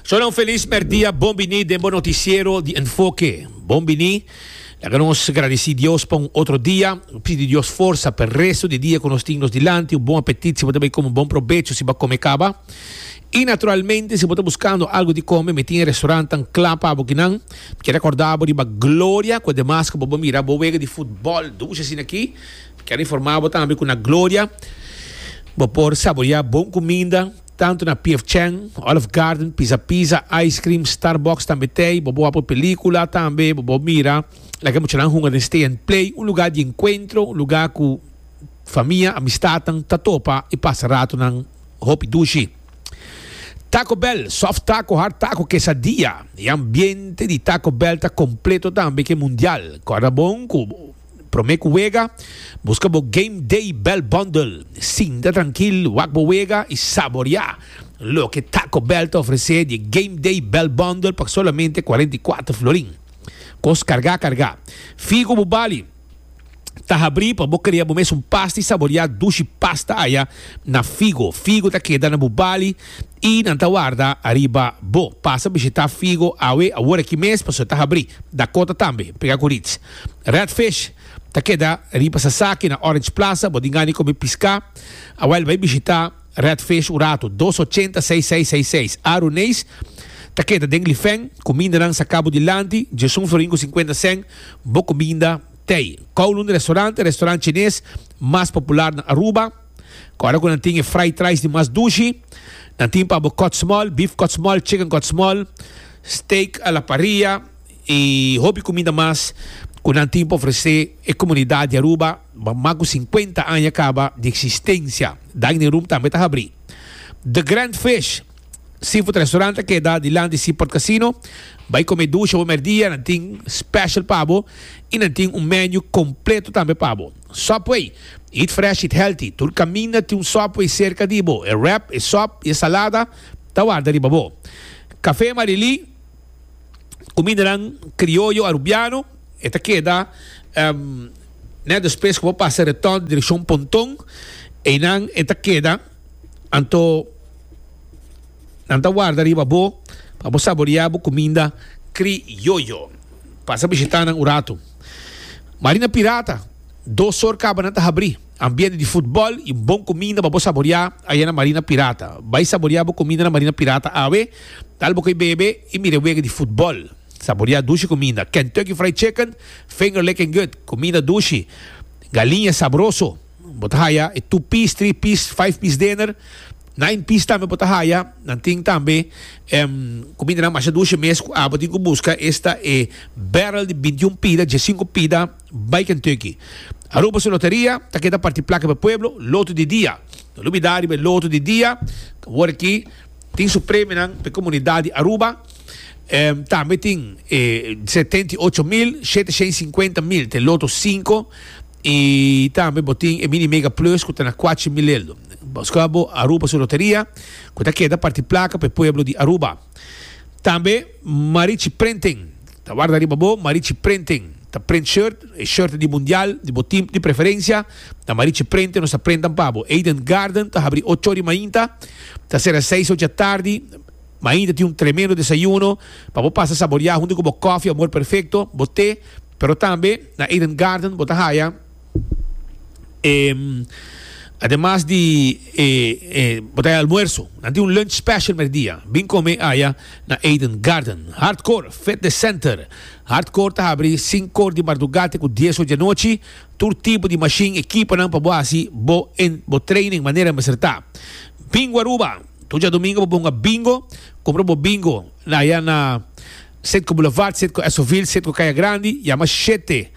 Zodat un feliz merdia, bon bini den bo noticiero di Enfoque. Bon bini. Laga nos gradici Dios pa un otro dia. Pidi Dios forsa pa e resto di dia cu nos tin nos dilanti. Un bon apetit si bo ta bay come un bon probecho si bo come caba. Y naturalmente si bo ta buscando algo di come mi tin e restaurantan cla pa bo kinan. Mi kier recorda bo riba Gloria cu ademas cu bo bo mira bo wega di futbol dushi asina aki. Kel informá bo tambe ku na Gloria bo por saboreá bon kuminda, tantu na PF Chang, Olive Garden, Pizza Pizza, ice cream, Starbucks, tambe tei. Bo por wak por pelíkula tambe, bo por mira loke muchanan hunga den Stay and Play, un lugá di enkuentro, un lugá ku famia, amistatnan ta topa i pasa ratonan hopi dushi. Taco Bell, sòf tako, hard tako, kesadia. E ambiente di Taco Bell ta kompleto tambe ke mundial. Kòrda bon ku Prome cu wega, busca bo Game Day Bell Bundle. Sinta trankil, wak bo wega y saborea loke Taco Bell ta ofrece di e Game Day Bell Bundle pa solamente cuarenta y cuater florin. Cos carga carga. Figu bo bali ta habri pa bo crea bo mes un pasta y saborea dushi pasta aya na Figo. Figo ta keda na bo bali y nan ta warda ariba bo. Pasa bishita Figo awe, aworaki mes, pasobra ta habri. Dakota tambe, pega cu Ritz. Redfish ta keda riba Sasaki na Orange Plaza, bo tin gana di komi piská? Awel bai bishitá Redfish un ratu, dos ochenta seis seis seis seis. Aruneis ta keda den Lifeng, kumindanan sa kabo dilanti, Jason Florin ku sinkuenta sèn, bo kuminda t'ei. Kowloon Restaurante, restorant chines mas popular na Aruba, kòrda ku nan tin e fried rice di mas dushi. Nan tin pa bo kòtsmòl, bif kòtsmòl, chicken kòtsmòl, steak a la parrilla. Y hopi cuminda mas cu nan tin pa ofrece e comunidad di Aruba pa mas cu cincuenta aña caba di existencia. Dining room tambe ta habri. The Grand Fish Seafood Restaurant ta keda dilanti Seaport Casino. Bay come dusha bo merdia, nan tin special pa bo y nan tin un menu completo tambe pa bo. Subway Eat Fresh Eat Healthy Tur caminda tin un Subway cerca di bo. E wrap, e sop y e salada ta warda riba bo. Café Marie Lee. kumindanan krioyo arubiano e ta keda nèt despues ku bo pasa retòn direkshon Pontón einan e ta keda anto nan ta warda riba bo pa bo saboriá bo kuminda krioyo pasa bishitá nan un ratu Marina Pirata dos sor kabanan ta habrí. Ambiente di futbol y bon cuminda pa bo saboria aya na Marina Pirata. Bay saboria bo cuminda na Marina Pirata awe, tal bo cu e bebe y mira e wega di futbol. Saboria dushi cuminda, Kentucky Fried Chicken, Finger Lickin' Good, cuminda dushi, galiña sabroso, bo ta haya e two piece, three piece, five piece dinner, nine piece tambe bo ta haya. Nan tin tambe cumindanan masha dushi mes cu abo tin cu busca esta e barrel di binti un pida, dje sinku pida. Bai Kentucky. Aruba su loteria ta keda parti plaka riba e pueblo, loto di dia. No lubida riba e loto di dia, awor aki tin su premionan pa e komunidat di Aruba. Tambe tin e setenta i ocho mil shete shen sinkuenta mil ta e loto sinku i tambe bo tin e mini mega plus ku ta na kuachi mil lel. Buska bo Aruba su loteria ku ta keda parti plaka pa e pueblo di Aruba. Tambe Marichi Printing ta warda riba bo, Marichi Printing. Ta prent shirt, e shirt di mundial di bo team di preferencia ta marichi prente nos ta prentan pa bo. Eden Garden ta habri ocho ora di mainta ta sera seis ora dja tardi. Mainta tin un tremendo desayuno pa bo pasa saboria hunto cu bo coffee amor perfecto, bo te, pero tambe na Eden Garden bo ta haya e ademas di e e bo ta haya almuerzo. Nan tin un lunch special merdia. Bin come aya na Eden Garden. Hardcore Fitness Center Hardcore ta habri sinku or di mardugá te ku dies or di anochi, tur tipo di mashin i ekiponan pa bo hasi bo en bo training manera mester ta. Bingo Aruba, Tur djadumingu bo bunga bingo, kumpra bo bingo na ya na Setco Boulevard, Setco Esovil, Setco Kaya Grandi, yama shete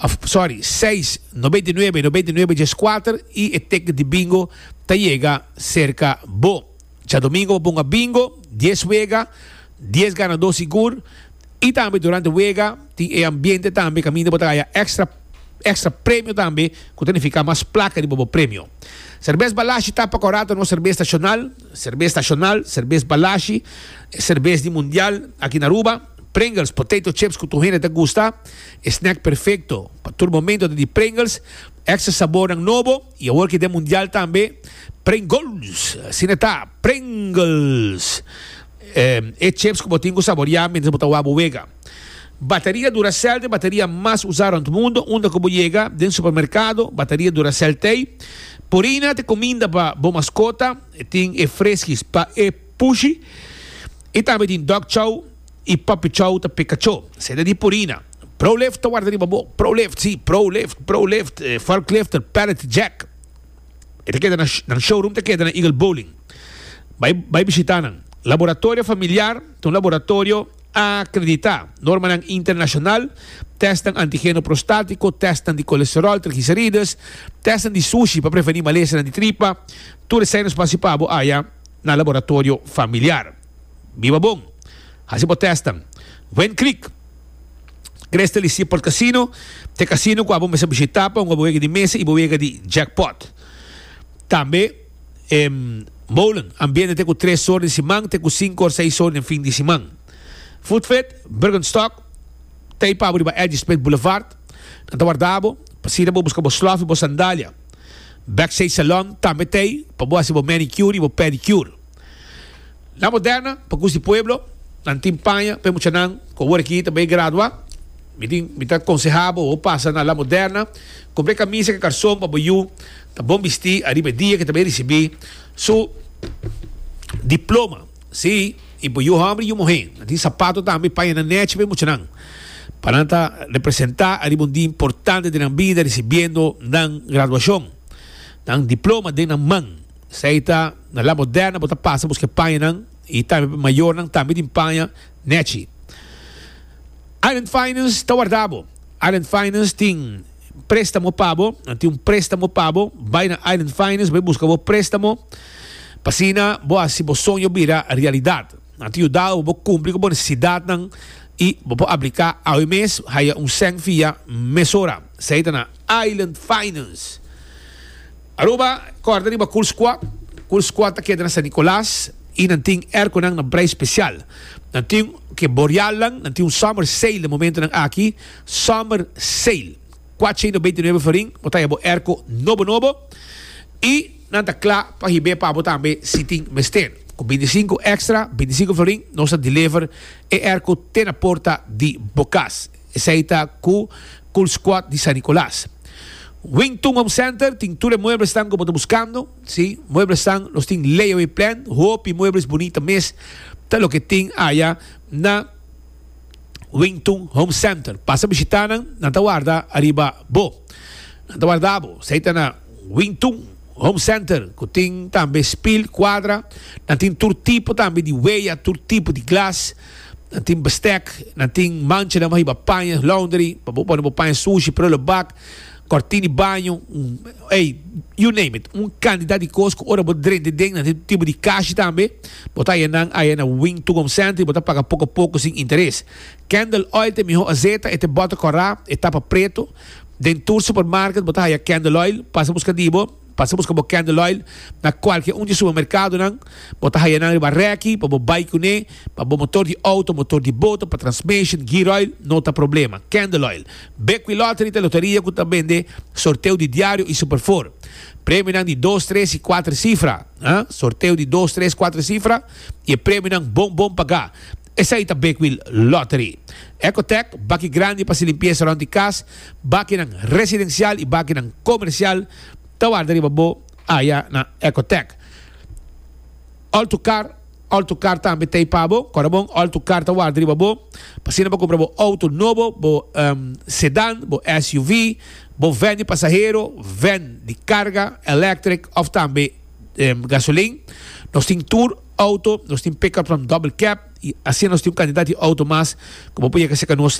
of sorry seis nobenta i nuebe nobenta i nuebe djes kuater i e teknik di bingo ta yega serka bo. Djadomingo bo bunga bingo, dies wega, dies ganadó sigur i tambe durante wega tin e ambiente tambe kaminda bo ta haya extra extra premio tambe ku ta nifiká mas plaka riba bo premio. Serbes Balashi ta pa kor rato nos serbes nashonal, serbes nashonal, serbes Balashi, e serbes di mundial aki na Aruba, Pringles, potato chips ku tur hende ta gusta, e snack perfekto pa tur momento ta di Pringles, extra sabornan nobo. Y awor ki den Mundial tambe Pringles, asina ta, Pringles. E chips ku bo tin ku saboria mientras bo ta wak bo wega. Bateria Duracell t'e bateria mas usa rond mundo, unda ku bo yega den supermerkado, bateria Duracell t'ei. Purina t'e kuminda pa bo maskota, tin e freskis pa e pushi. Y tambe tin Dog Chow. I papi chou ta peka cho. Seda di Purina. Prolift ta warda riba bo. Prolift, si, Prolift, Prolift, e forklifter, pallet jack. E ta keda na, nan showroom ta keda na Eagle Bowling. Bai, bai bishita nan. Laboratorio familiar ta un laboratorio akreditá. Normanan internashonal, tèstnan antigeno prostátiko, tèstnan di kolesteròl, trigliserides, tèstnan di sushi pa prevení malesanan di tripa. Tur esèi nos pasa pa bo aya na laboratorio familiar. Biba bon! Hasi bo tèstnan. Win Creek, Crystal y Seaport Casino ta e casino cua bo mester bishita pa hunga bo wega di mesa y bo wega di jackpot. Tambe e molen ambiente ta cu tres or den siman ta cu cinco or seis or den fin di siman. Food Fit, Bergenstock, ta y pa bo riba Eddy Smith Boulevard. Nan ta warda bo pa sina bo busca bo slof y bo sandalia. Backstage Salon tambe ta y pa bo hasi bo manicure y bo pedicure. La Moderna, pa cus di pueblo, nan tin paña pa e muchanan cu awor aki ta bay gradua. Mi tin, mi ta conseha bo bo pasa na La Moderna, compra e camisa cu e carson pa bo yu ta bon bisti ariba e dia cu ta bay ricibi su diploma. Sí, y bo yu homber y yu muhe nan tin sapato tambe, paña nan nechi pa e muchanan, pa nan ta representa ariba un dia importante den nan bida ricibiendo nan graduacion, nan diploma den nan man. Esei ta na La Moderna bo ta pasa buska e pañanan i tambe pa mayornan tambe tin paña Nechi. Island Finance ta warda bo. Island Finance tin préstamo pa bo. Nan tin un préstamo pa bo. Bai na Island Finance bai buska bo préstamo pa asina bo hasi bo soño bira realidat. Nan ta yuda bo bo kumpli ku bo nesesidatnan i bo por apliká awe mes haya un sèn fia mesora. Esei ta na Island Finance. Aruba, Kòrda riba Cool Squad, Cool Squad ta keda na San Nicolas y nan tin airconan na brai special. Nan tin ke Borealnan, nan tin un summer sale den momentonan aki, summer sale. Cuaciento beinti nuebe florin bo ta ya bo airco nobo nobo y nan ta cla pa hib'é pa bo tambe si tin mester. Cu binti sinku extra, binti sinku florin, nos ta deliver e airco te na porta di bo cas. Esei ta ku Cool Squad di San Nicolas. Wington Home Center tin tur e mueblesnan ku bo ta buskando. Sí, mueblesnan los tin layaway plan, hopi muebles bunita mes ta loke tin aya na Wington Home Center. Pasa bishita nan, nan ta warda ariba bo. Nan ta warda bo. Esei ta na Wington Home Center ku tin tambe spill, kuadra. Nan tin tur tipo tambe di weya, tur tipo di glas. Nan tin bestek, nan tin manchanan bo hiba paña, laundry, pa bo pone bo paña sushi, prullen bak, kòrtin di baño, ey, you name it. Un kantidat di kos ku ora bo drenta den, nan tin tur tipo di kashi tambe. Bo ta haya nan aya na Wing Tucum Center i bo ta paga poko poko sin interes. Candle Oil ta e mihó azeta, e ta e bòter kòrá, e tapa pretu. Den tur supermarket bo ta haya Candle Oil. Pasa buska di bo. Pasa buska bo candle oil na cualkier un di supermercadonan. Bo ta haya nan riba reki pa bo bay cune. Pa bo motor di auto, motor di boto, pa transmission, gear oil, no ta problema. Candle oil. Bequilottery ta loteria cu ta bende sorteo di diario y superfor. Premionan di dos, tres y cuater cifra. Sorteo di dos, tres, cuater cifra y e premionan bon bon paga. Esei ta Bakewheel Lottery. Ecotec, baki grandi pa si limpiesa rond di cas, bakinan residencial y bakinan comercial ta warda riba bo aya na Ecotec. All to car, All to car tambe t'ey pa bo, Corabon All to car ta warda riba bo, p'asina bo cumpra bo auto nobo, bo sedan, bo SUV, bo ven di pasahero, ven di carga, electric of tambe gasolin. Nos tin tour. Auto, nos tin pickups nan double cab y asina nos tin un cantidad di auto mas cu bo por yega cerca nos.